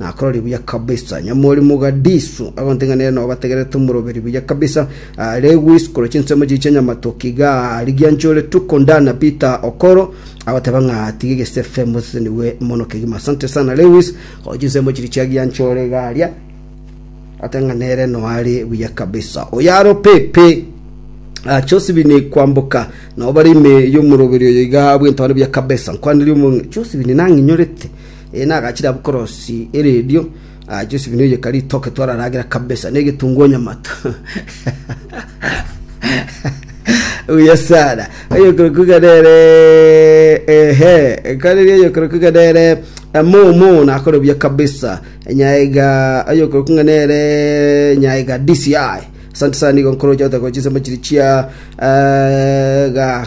Nakororire buya kabisa. Nyamorimo Gadisu agonteng'ena nere nao bategerete omoroberi buya kabisa. Are gwisikora chinsemo chiria chia Nyamatoke iga rigia nchore Tuko Ndana Peter Okoro agoteba ng'a tiga egesefe mosesenigwe mono kegima. Asante sana Lewis gocha chinsemo chiria chia gia nchore iga aria. Ate ng'a nere no are buya kabisa. Oyaro Pepe Ah, Josephine kwamboka nao bare ime y'omoroberi oyo iga bwento are buya kabisa. Nkwanire omo Josephine nang'inyorete. Ee, nagachire abwo korosi eredio, agachia osimina oyeka ritoke twararagera kabisa, ne egetungu onye amato. Buya sana. Oyokorokwa iga nere ehe, ekareri oyokorokwa iga nere momo nakore buya kabisa. Nyaiga oyokorokwa iga nere nyaiga DCI. Asante sana nigo nkoroche otagochisa machiri chia eh, ga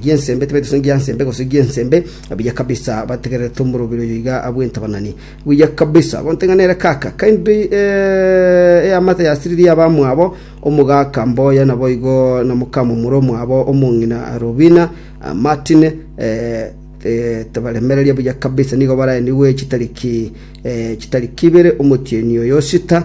gi'ensembe, tibaita sonsi gia nsembe gose gi'ensembe, buya kabisa bategererete omoroberi oyo iga abwe entabanani. Buya kabisa, gonte ng'a nere kaka, kaindu eamate yasiririe abamwabo, omogaka mboya naboigo na mokamomura omwabo omong'ina Robina, Martine, tabaremereria buya kabisa, nigo baraenigwe chitariki chitari kibere omotienyi oyo Sita,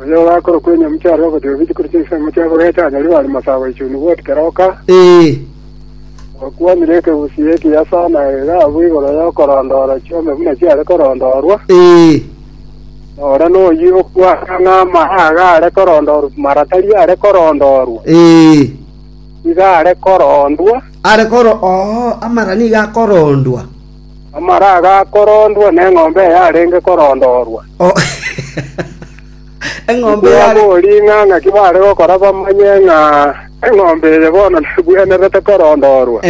Oyo orakora kw'enyamucha are ogotiga bichukuru chi'ensemo chia Korete anyarire are mosaabo oichuni bwoti kera oka. Ee, Okwanire ekegusii ekiyaso na egaabu igoro y'okorondoora chiombe buna chiare korondoorwa, ee, na ore noyio okwana ng'a amaya aga are korondoorwa mara tari are korondoorwa, ee. iga are korondwa. Are koro oo amara nigo akorondwa. Amara agakorondwa neng'ombe eyarenge korondorwa. Tibwabori ng'a ng'aki baare gokora bamanye ng'a eng'ombe eye bono nebwenerete korondorwa.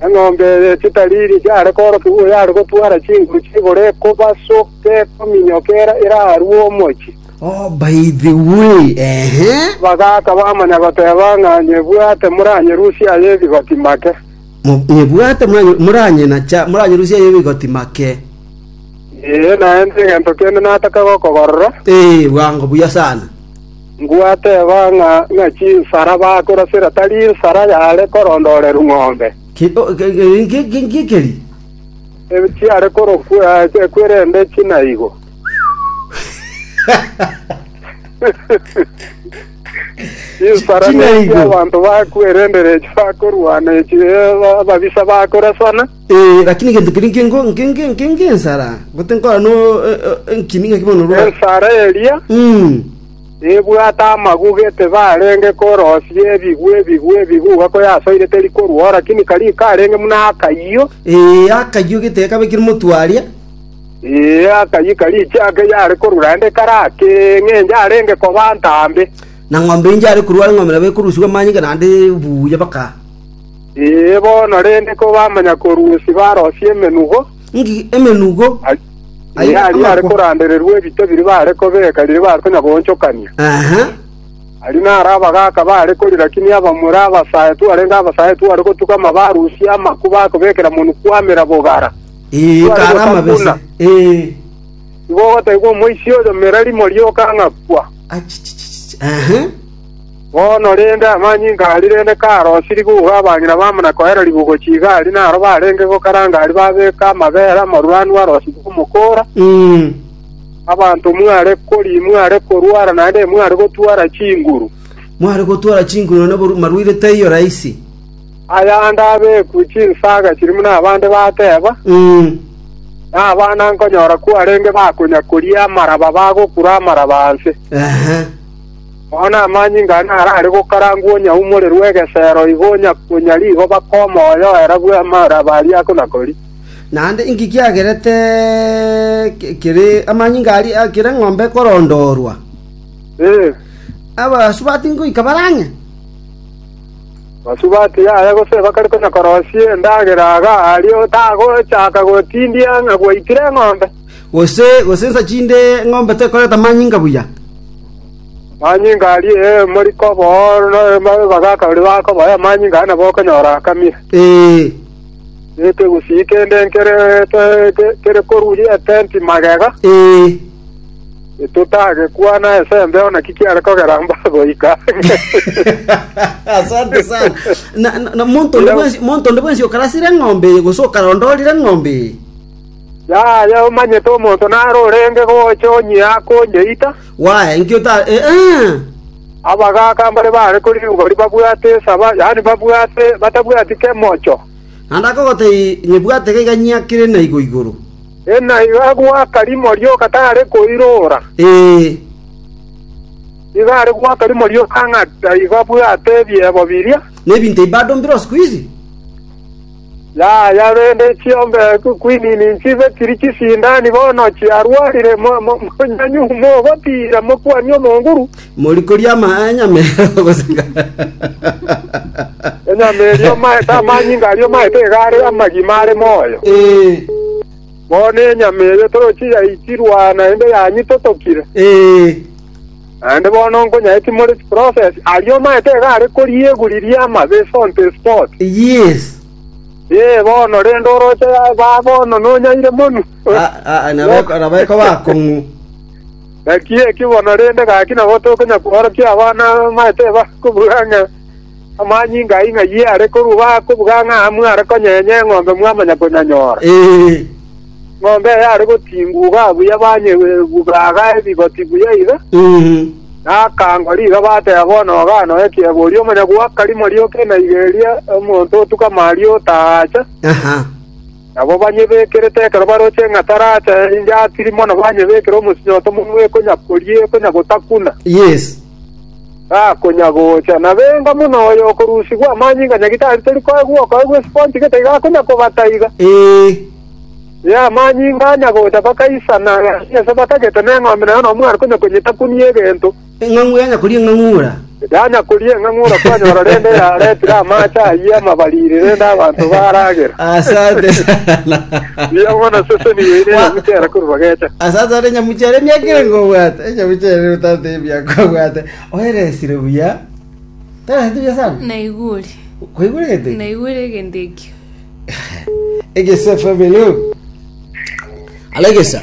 Eng'ombe eye chitariri chiare koorokigwa oyare gotwara chinguru ch'igoro ekobasoka ekominyoka era erarue omochie. Abagaaka bamanya goteba ng'a nyebwate moranyerusie aye ebigoti make. “Nyebwate, moranyenacha, moranyerusia aye rigoti make.” Ee, naende egento kende nataka gokobarora. Ee, bwango buya sana. Ngwateba ng'a ng'a chinsara bakorasera tari nsara yare korondorerwa ng'ombe, Ngikeri? chiare korokwa ekwerende chinaigo. Chinsara Ching'aigo. nechia abanto bakwerendera echi bakorwana echi eh, ababisa bakorasana. Eh, lakini egento keria nke nko- nke- nke- nke- nke ensara gote nkora no eh, eh, enkini ng'aki bono rwa Ensara eria Mm. ebwate amaguga etibarenge korosia ebigwe ebigwe ebiguga koyasoire teri korwao lakini kari karenge muna akayio Eh, akayio gete kabekire motwaria Ee, akayika riiche ake yare korura ende kare ake, ng'encho arenge koba ntambe. Na ng'ombe inche yare korua ng'ombe nabo ekorusigwa amanyinga naende buya baka. Ee, bono rende kobamanya korusia barosie emenugo. Ng'iki emenugo? Ee, aria yare korandererwa ebito biria baare kobeka riria baare konya goonchokania. Aha. Aria naro abagaaka baare korira kinia abamura abasae twarenge abasae tware gotuga amabarusia amaku bakobekera monwe kwamera bogara. Ee, Tware kare amabese. gotambuna. Ee. Igo ogoteebwa omoisia oyo merari moria okang'akwa. Achichichichi. Aha. Bono rende amanyinga aria rende karosiri gugwa abang'ina bamo na koera ribugo chigari naro barenge gokaranga aria babeka amabera amoruranu arosirwe omokora, Mm. abanto mware kori mware korwara naende mware gotwara chinguru. Mware gotwara chinguru na boru- marwaire taiyo rahisi. Ayande abekwe chinsaga chiri buna abande bateba, nabana nkonyora kwarenge bakonya koria amaraba bagokura amaraba anse. Bono amanyinga ane arare gokarangwa onyaumorerwe egesero igo onya konya rigoba komoyo era bw'amaraba aria akona koria. Naende inki kiagerete kere amanyinga aria akire ng'ombe korondorwa? Abasubati ngoika barang'e? Basubati yaya gose bakare konya korosia endagera iga, ario tagochaka gotindia ng'a gwaitire eng'ombe. Gose gosensa chinde eng'ombe tekoreta manyinga buya. Manyinga aria ee moriko bo, na abagaaka baria bakoboa amanyinga aya nabo okonyora akamia. Ee, Nekegusii kende nkere kere koruria etenti magega. ee. Totagekwana esembe ona ki kiare kogera mbagoika. asante sana na, na, na monto onde Ira- bwensi monto onde bwensi okarasire eng'ombe eye gose okarondorire eng'ombe eye Yaya omanyete omonto naro orenge gocha onyia akonyeita. waya inki ota eh, eh. Abagaka mbare bare kori igori babwate esaba, yani babwate batabwati kemocho. naende akogotei nyebwate gaiga nyiakire na igo igoro Enaiga agwo aka rimo rioka tare koirora. Ee. Nigo are goaka rimo rioka ng'a taiga abwate ebiebo biria. Nebinto ebi bado mbire o siku hizi? Yaya rende chiombe kwinini nchibe chiri chisindani bono chiarwarire, mo- mo- monyanyuhu mogotiira, mokuani omonguru. Mori koria amaya nyama erio gose ngare? Enyama erio maete amanyinga aria maete iga are amagima are moyo. Ee, Bono enyama eyo torochi yaichirwa naende yanyitotokire. ee. Naende bono nkonyae timore chiproses, ario maete iga are koria eguri riama, the salt spot. Yes. Ee, bono rende oroche ba bono nonyaire monu. Ah, ah, nabe- nabae koba akong'u. Naki eki bono rende gaki nabo tokonya kworokia abana bamaete bakobuga ng'a amanyinga ai ng'ayio are, korwa bakobuga ng'a mware konyenya eng'ombe mwamanya konyanyora. Eng'ombe eye are gotinguga buya banyebuga aga ebigoti buya iga, na akango riga bateba bono ogana oye kiegwa oria omonyagoaka rimo rioka enaiga eria omonto otuka Maria otaha acha. Nabo banyebekerete ekero baroche eng'ata raacha inche atiri mono banyebekere omosinyo otomonwa ekonya koria ekonya gotakuna. Yes. Gakonya gocha. Nabenga mono oyo okorusigwa amanyinga nyaki tari tori koegwa okoegwa esponge gete igakonya kobata iga. Ee. Ee amanyinga anya gocha bakaisana gasi ase bakagete neng'ombe nayo nomwana konya konyetakunia egento. Eng'ang'u yanyakoria eng'ang'ura. Yanyakoria eng'ang'ura kwanyora rende yaretire amaache ayio amabariri rende abanto baragera. Asante sana. Mbuya mono seseni yoine enyamucha ere korwa bagecha. Asante sana enyamucha ere emiaka ere ngobwate. Enyamucha ere otate emiaka obwate. Oeresire buya. Toeresire buya sana. naigure Kwaigure gete. naigure egento ekio Egesa FM hello. Alegesa.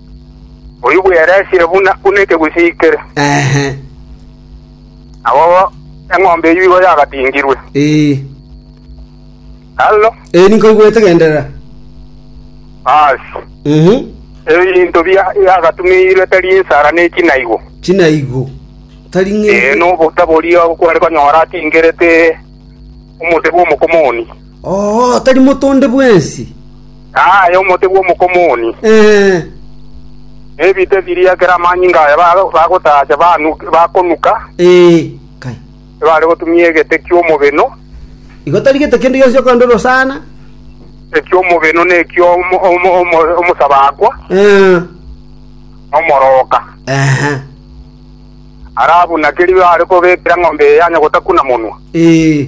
Oyio bweresire buna ekegusii kere. Nabo eng'ombe eyio igo yagatingirwe. Hallo? Ee, ninkoigwete, genderera. Aase. Ebinto biagatumeirwe tari ensara ne chinaigo. Chinaigo. Tari ng'encho. Ee, nobota boria kware konyora atingerete omote bw'omokomoni. Oo, tari motonde bwensi. Aye omote bw'omokomoni. Eh, Nebite biria ekero amanyinga aya ba- bagotaacha banu- bakonuka, eh, kai. ebare gotumia egete ki'omobeno, Igo tari gete kende gionsi okogenda ore osana. eki'omobeno na eki'omo- omo- omo- omosabakwa, Eh, na omoroka. ehe, Ara abuna keria are kobekera ng'ombe eye yanyogota kuna monwa. eh,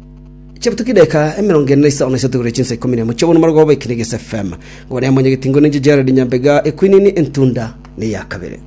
Chidaeka emerongo ene na isano na isato igoro chinsa ikomi na emo chi'obonwa bw'omobarogo bwa Ekenegesi FM. Ngore monyegeti ngore ninche Gerald Nyambega, Ekwinini Entunda neya kabere.